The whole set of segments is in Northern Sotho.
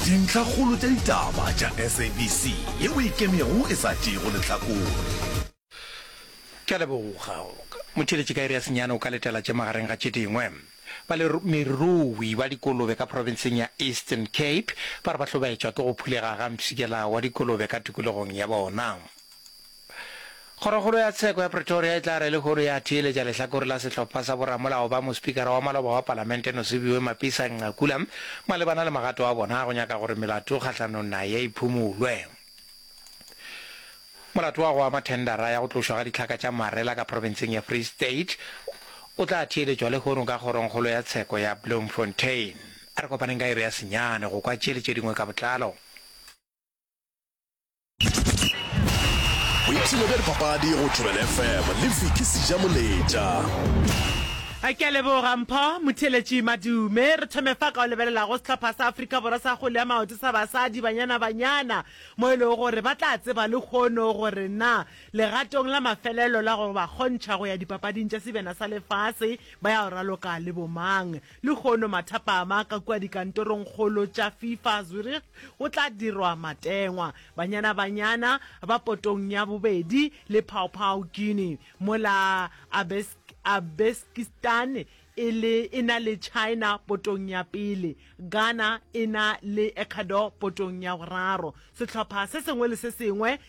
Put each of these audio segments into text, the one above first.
Dintlhakgolo tša ditaba tša SABC ye o e kemego e sa tšeego lehlakore. Ke a leboga. Motheeletši ka iri ya senyane o ka letela tše magareng ga tše dingwe. Balemirui ba dikolobe ka profenseng ya Eastern Cape ba re ba hlobaetšwa ke go phulega ga mpshikela wa dikolobe ka tikologong ya bona. Kgorokgolo ya Tsheko ya Pretoria e tla re lehono ya theeletša lehlakore la sehlopha sa boramolao ba mospikara wa maloba wa palamente Nosiviwe Mapisa-Nqakula malebana le magato a bona a go nyaka gore melato kgahlanong naye e phumulwe. Molato wa go ama thendara ya go tlošwa ga ditlhaka tša marela ka profenseng ya Free State o tla theeletšwa lehono ka kgorongkgolo ya tsheko ya Bloemfontein. A re kopaneng ka iri ya senyane go kwa tše le tše dingwe ka botlalo. boipshino bja dipapadi go thobela fm le fiki seja moletša a ke a leboga mpho motheletši madume re thome fa ka o lebelelago setlhopha sa aforika borwa sa gole ya maoto sa basadi banyana banyana mo e lego gore ba tla tseba le kgono gore na legatong la mafelelo la go ba kgontšha go ya dipapading tša sebjana sa lefase ba ya o raloka le bomang Lehono mathapama a ka kua dikantorongkgolo tša FIFA Zurich go tla dirwa matengwa. Banyana Banyana ba potong ya bobedi le Paopao Guinea, mola Uzbekistan e le e na le China potong ya pele, Ghana e na le Ecuador potong ya boraro. Sehlopha se sengwe le se sengwe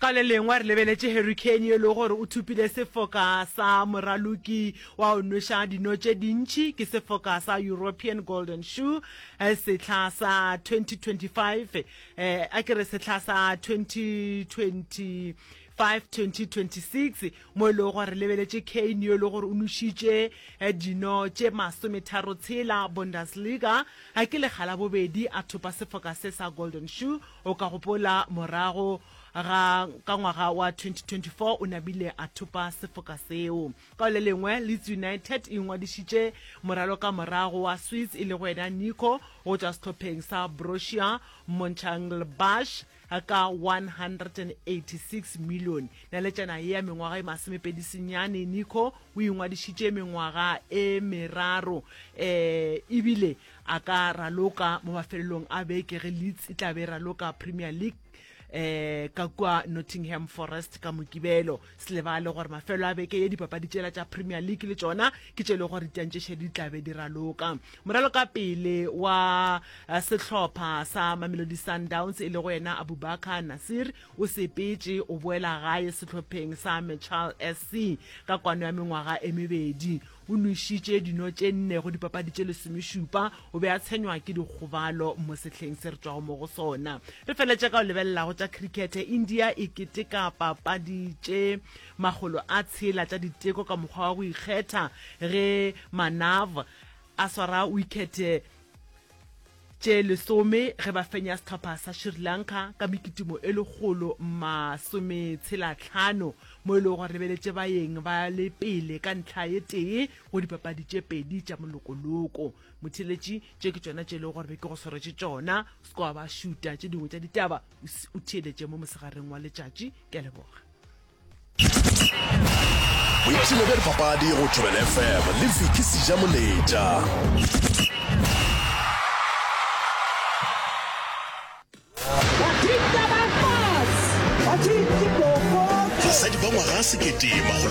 Ka le lengwe re lebeletše hurricane yo e lego gore o thupile sefoka sa moraloki wa o nweša dino tše dintši ke sefoka sa European Golden Shoe eh, sehla sa 2025 eh, a ke re sehla sa 2020 5-2026 mo e lego gore re lebeletše kane yo e le gore o nošitše eh, dino tše masometharo tshela bundesliga a ke lekga la bobedi a thopa sefoka se sa golden shoe O ka gopola morago ga ka ngwaga wa 2024 o nabile a thopa sefoka seo. Ka le lengwe, Leeds United e ngwadišitše moraloka morago wa Swiss e lego yena Nico go tšwa sehlopheng sa Borussia Mönchengladbach ka 186 million. Naletšana ye ya mengwaga e masomepedi senyane, Nico o ingwadišitše mengwaga e meraro um ebile A ka raloka mo mafelelong a beke ge Leeds e tla be e raloka Premier League um ka kua Nottingham Forest ka Mokibelo. Se lebale gore mafelo a beke ye dipapadi tšela tša Premier League le tšona ke tše e le gore ditantšešedi di tla be di raloka. Moralokapele wa eh, sehlopha sa Mamelodi Sundowns e lego yena Abubakar Nasir o sepetše o boela gae sehlopheng sa Mechal SC ka kwano ya mengwaga e mebedi. O nwešitše dino tše nne go dipapadi tše lesomešupa. O be a tshenywa ke dikgobalo mo sehleng se re tšwago mo go sona. Re feletše ka go lebelela go tša khirikhethe. India e keteka papadi tše makgolo a tshela tša diteko ka mokgwa wa go ikgetha ge Manav a swara wikhethe tše lesome ge ba fenya sehlopha sa Sri Lanka ka mekitimo e lekgolo masometshelatlhano mo e lego gore lebeletše baeng ba le pele ka ntlha ye tee go dipapadi tše pedi tša molokoloko. Motheeletši, tše ke tšona tše e lego gore be ke go swaretse tšona. Skoa ba šuta tše dingwe tša ditaba o theeletše mo mosegareng wa letšatši. Ke a leboga. boipshino bja dipapadi go tšhobele fm le viki seja moletša basadi ba ngwaga sekete magolo